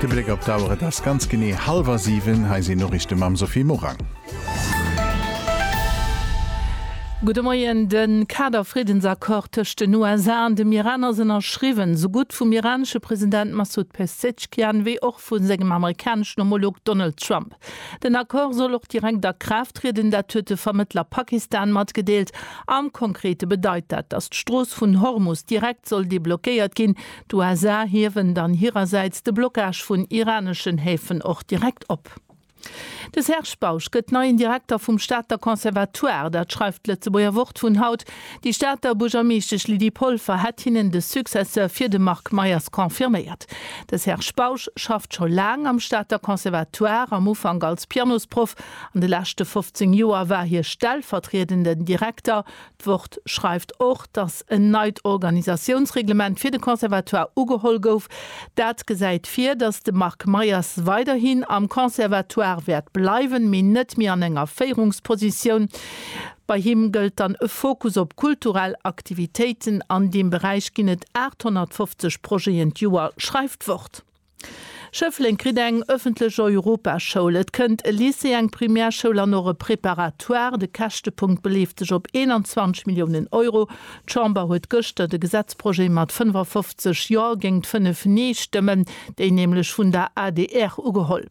De Bléck op d'Auer, et ass ganz genee hallwer 7, hei sinn Noriichte mam Sophie Morang. Gudde Moien, De Kader-Friddensaccord tëscht den USA an dem Iran ass ënnerschriwwen, esou gutt vum iranesche President Massoud Pezeshkian wéi och vu sengem amerikaneschen Homolog Donald Trump. Den Accord soll och direkt a Kraaft trieden, dat huet de Vermëttler Pakistan matgedeelt. Am Konkrete bedeit dat, datt d'Strooss vun Hormus direkt soll deblockéiert ginn, D'USA hiewen dann hirersäits de Blockage vun iraneschen Häfen och direkt op. De Serge Bausch gëtt neien Direkter vum Stater Conservatoire, dat schreift d'Lëtzebuerger Wort vun haut. Déi Stater Buergermeeschtesch Lydie Polfer hätt hinnen de Successeur fir de Marc Meyers confirméiert. De Serge Bausch schafft scho laang am Stater Conservatoire, am Ufank als Pianosproff, an de leschte 15 Joer war hie stellvertriedenden Direkter, D'Wort schreift och, datt en neit Organisatiounsreglement fir de Conservatoire ugeholl gouf. Dat gesäit vir, datt de Marc Meyers weiderhin am Conservatoire wäert bleiwen, mee net méi an enger Féierungspositioun. Bei him gëllt dann e Fokus op kulturell Aktivitéiten. An deem Beräich ginn et 850 Projeten d'Joer, schreift d'Wort. Schëffleng kritt eng ëffentlech Europaschoul, et kënnt e Lycée, eng Primärschoul an och e Préparatoire. De Käschtepunkt beleeft sech op 21 Milliounen Euro. D'Chamber huet gëschter de Gesetzprojet mat 55 Jo géingt 5 Nee-Stëmmen, déi nämlech vun der adr, ugeholl.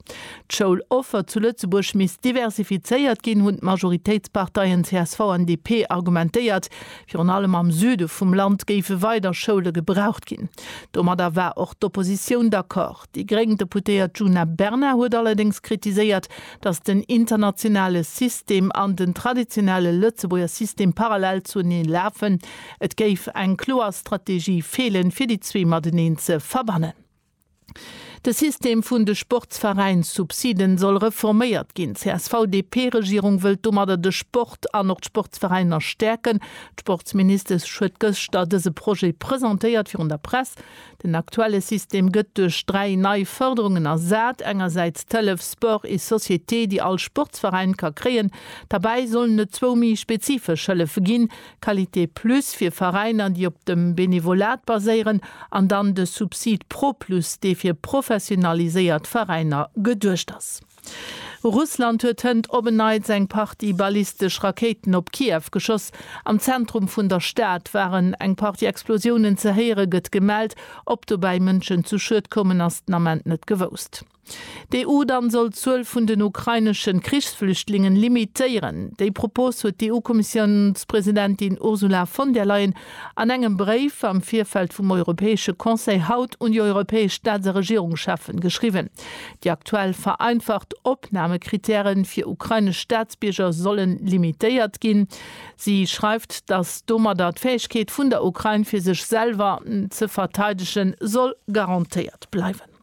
D'Schouloffer zu Lëtzebuerg misst diversifizéiert ginn, hunn d'Majoritéitsparteien csv an DP argumentéiert. Virun allem am Süde vum Land géife weider Schoule gebraucht ginn. Domadder war och d'Oppositioun d'accord. Déi gréng Deputéiert Djuna Bernard huet allerdéngs kritiséiert, datt den internationale System an den traditionelle Lëtzebuerger System parallel zueneen lafen. Et géif eng kloer Strategie feelen, fir déi zwee mateneen ze verbannen. De System vun de Sportsveräinssubsiden soll reforméiert ginn. D'CSV-DP-Regierung wëllt domadder de Sport an och d'Sportsveräiner stäerken. D'Sportsministesch huet gëschter dëse Projet presentéiert virun der Press. Den aktuelle System gëtt duerch dräi nei Fërderungen ersat, engersäits d'Hëllef Sport et Société, déi all Sportsveräin ka kréien. Derbäi sollen et zwou méi spezifesch Hëllefe ginn, Qualité Plus fir Veräiner, déi op dem Benevolat baséieren, an dann de Subsid Pro Plus, dee fir professionaliséiert Veräiner geduecht ass. Russland huet hënt op en Neits eng Partie ballistesch Rakéiten op Kiew geschoss. Am Zentrum vun der Stad waren eng Partie Explosiounen ze héieren, gëtt gemellt. Ob dobäi Mënschen zu Schued koumen, ass den Ament net gewousst. D'EU dann soll d'Zuel vun den ukraineschen Krichsflüchtlingen limitéieren. Déi Propos huet d'EU-Kommissiounspresidentin Ursula von der Leyen an engem Bréif am Virfeld vum Europäesche Conseil haut un déi europäesch Staats a Regierungscheffen geschriwwen. Déi aktuell vereinfacht Opnamekritäre fir ukrainesch Staatsbierger solle limitéiert ginn. Si schreift, datt domadder d'Fäegkeet vun der Ukrain fir sech selwer ze verteidegen soll garantéiert bleiwen.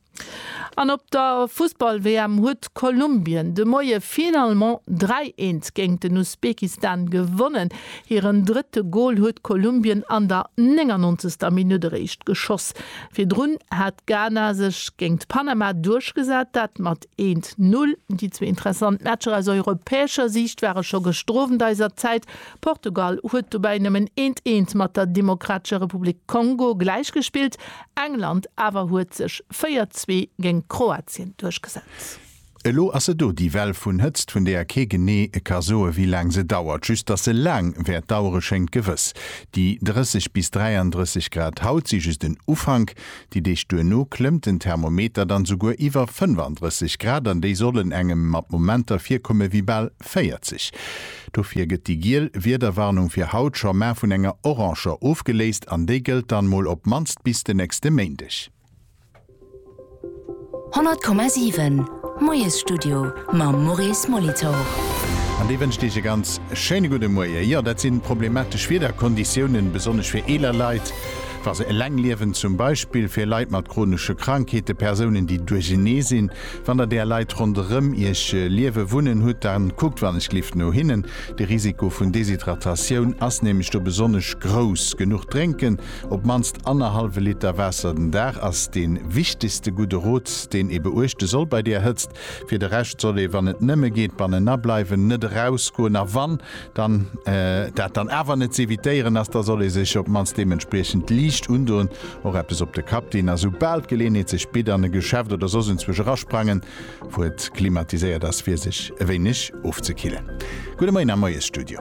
An op der Fussball-WM huet Kolumbien de Moie finalement 3, 1 géint den Usbekistan gewonnen. Hiren drëtte Gol huet Kolumbien an der 99. Minutt eréischt geschoss. Virdrun hat Ghana sech géint Panama duerchgesat, dat mat 1, 0. Déi zwee interessant Matcher aus europäescher Siicht ware scho gëschter Owend eiser Zäit. Portugal huet dobäi nëmmen eent, eent mat der Demokratescher Republik Kongo gläichgespillt. England awer huet sech 4, Zwee géint Kroatien duerchgesat. Elo ass se do, déi Well vun Hëtzt, vun deeër kee genee ka soe wéi laang se dauert. Just datt se laang wäert dauere schéngt gewëss. Déi 30 bis 33 Grad haut si just en Ufank. Déi Deeg duerno klëmmt den Thermometer dann souguer iwwer 35 Grad an déi sollen engem mat Momenter virkomme wéi bal 40. Dofir gëtt déi giel Wiederwarnung fir haut scho mar vun enger oranger ofgeléist an déi gëllt dann mol op d'mannst bis de nächste Méindeg. 100,7 Moiesstudio mam Maurice Molitor. An dee wënscht Iech e ganz schéine gudde Moie. Jo, dat si problematesch Wiederkonditiounen, besonnesch fir eeler Leit, wa se eleng liewen, zum Beispill fir Leit mat chronesche Krankheete, Persounen, déi duerchenee sinn, Wann der där Leit ronderëm iech liewe wunnen hutt, da kuckt wannechlift no hinnen. De Risiko vun Deshydratatioun ass nämlech do besonnesch grouss. Genuch drénken, op d'mannst annerhallwe Liter Waasser den Dag, ass dee wichtegste gudde Rot, deen ee beuechte soll bei där Hëtzt. Fir de Rescht soll ee, wann et nëmme geet, bannenan bleiwen, net erausgoen a wann, Dann dat dann awer net z'evitéieren ass, da soll ee sech op d'mannst deementspriechend liicht undoen, och eppes op de Kapp dinn a soubal d'Geleeënheet sech bitt an e Geschäft oder soss enzwuesch erasprangen, wou et klimatiséiert ass, fir sech e wéineg ofzekillen. Gudde Moien am Moiesstudio.